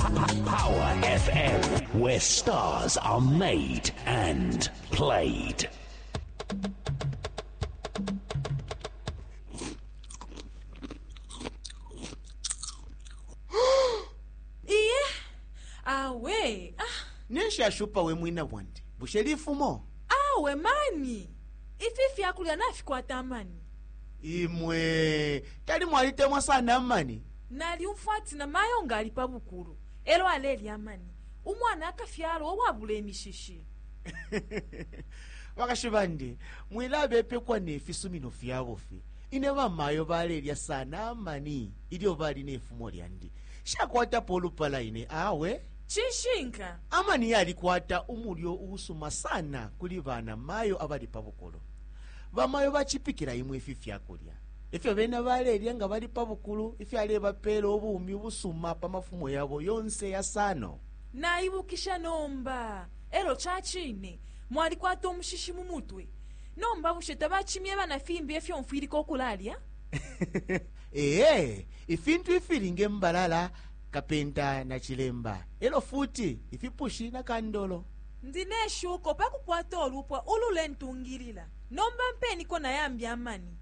Power FM, where stars are made and played. iye awe ah, ninshi ashupa we mwina bwandi bushe lifumo awe mani ifi fyakulya nafikwata amani imwe tali mwalitemwa sana amani Nalyumfwa ati na mayo nga ali pa bukulu elo alelya amani, umwana akafyalwa uwabula imishishi. Bakashi bandi, mwilabepekwa ne fisumino fya bufi. Ine bamayo balelya sana amani ilyo bali ne fumo lyandi. Nshakwatapo ulupala ine awe. Cishinka. Amani yalikwata umulyo uusuma sana kuli banamayo abali pa bukulu. Bamayo bacipikila imwe ifi fyakulya. Ifyo bena balelya nga bali pa bukulu ifyalebapela ubumi ubusuma pa mafumo yabo yonse yasano. Naibukisha nomba. Elo cacine, mwalikwata umushishi mu mutwe. Nomba bushe tabacimyeba na fimbi efyo mfwilika ukulalya? Ee, ifintu ifili nge mbalala, kapenta na cilemba, elo futi ifipushi na kandolo. Ndi ne shuko pakukwata ulupwa ululentungilila. Nomba mpeniko nayambi amani.